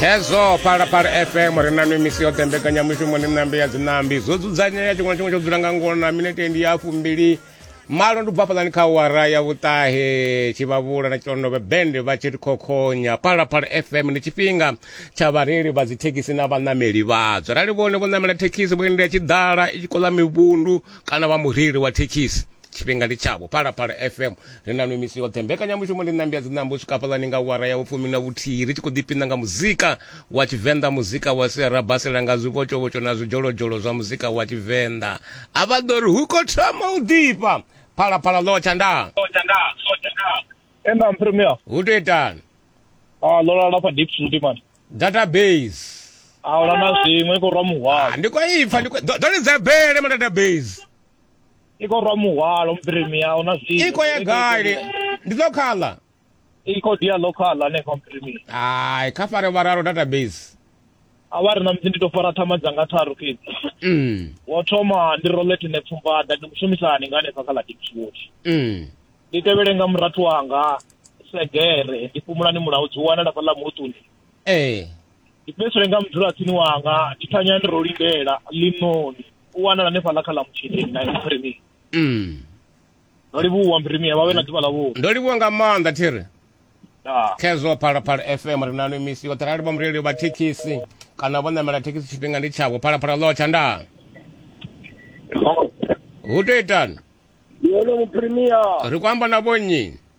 hezwo phalaphala fm ri na mimisi yoṱhe mbekanyamushumo ni ṋambi ya dziṋambi zwo dzudzanyea tshiṅwe na tshiṅwe tsho dzula nga ngono na minete ndi ya fumbili malo ndi bvafhaḽani kha wara ya vhuṱahe tshivhavhula na tshilondovhe bende vha tshi ri khokhonya phalaphala fm ndi tshifhinga tsha vhareili vha dzithekhisi na vhaṋameli vhadzo arali vhone vho ṋamela thekhisi vho endela tshiḓala i tshi koḽa mivhundu kana vha mureili wa thekhisi tshifhinga ndi tshavho phalaphala fm ri na nwe misi yoṱhe mbekanyamushumo ndi ṋambi ya dziṋambo u swika fhaḽani nga wara ya vhufumi na vhuthihi ri tshi khou ḓipina nga muzika wa tshivenḓa muzika wa sia ra basela nga zwivhotshovhotsho na zwidzholodzholo zwa muzika wa tshivenḓa a vha ḓo ri hu khou thoma u ḓifha phalaphala ḽotsha nda Ema mpremia. hu tou itani Ah lola lapha deep fruit man. database Ah ola na zwiṅwe ko rwa muhwalo. ndi khou ipfa ndi khou- ḓo- ḓo lidza bele ma database i khou rwa muhwalo mpirimi a huna zwithu i khou ya gale ndi lokhala i khou dia lokhala hanefha mpirimi hai kha fare vhararo database a vha ri na musi ndi tou fara thama dzanga tharu fhedzi mm. wo thoma ndi robert ne pfumbaḓa ndi mushumisani nga hanefha kha ladipswood mm. ndi tevhele nga murathu wanga segere ndi fhumulani mulaho dzi wanala fhaḽa muṱuni ee eh. ndi fhedzisele nga mudzulatsini wanga ndi thanya ndi ro lindela ḽinoni u wanala hanefhaḽa kha ḽa mutshileni na mphirimi mm. ndo livhuwa mphirimi vha vhe na ḓuvha ḽavhuḓi ndo livhuwa nga maanḓa thiri khezwo phalaphala fm ri nano misi yoṱhe rali vha mureili vha thekhisi kana vho namela thekhisi tshifhinga ndi tshavho phalaphala ḽo tsha ndaa hu to itani ri ku amba na vhonnyi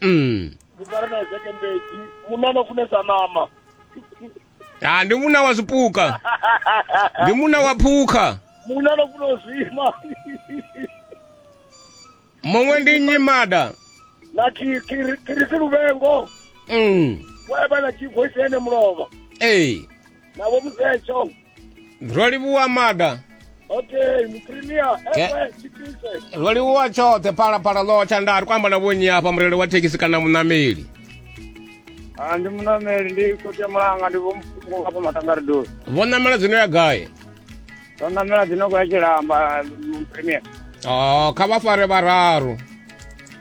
mm. ndi fara na ezeke mbedzi munna no funesa ṋama ha ndi munna wa zwipuka ndi munna wa phukha munna no funa u zwima muṅwe ndi nyimada na ki- kiri- kirisi luvengo mm. wevha na chivoisi ene mulova ee nabo muzetsho ro livhuwa maga okay muprimier Ke- ewe tshitise ro livhuwa tshoṱhe phalaphala ḽo tsha nda ri kho amba na vhonyi hafha mureli wa thekhisi kana muṋameli Ah, ndi munameli ndi khosi ya mulanga ndi vhomfungo hafha matangaridoni vho ṋamela dzino ya gai ndo namela dzinoko ya tshilamba muprimier o kha vha fare vhararu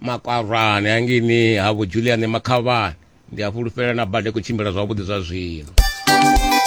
makwarane hangini ha vho julian makhavhani ndi a fhulufhela na bada i khou tshimbila zwavhuḓi zwa zwino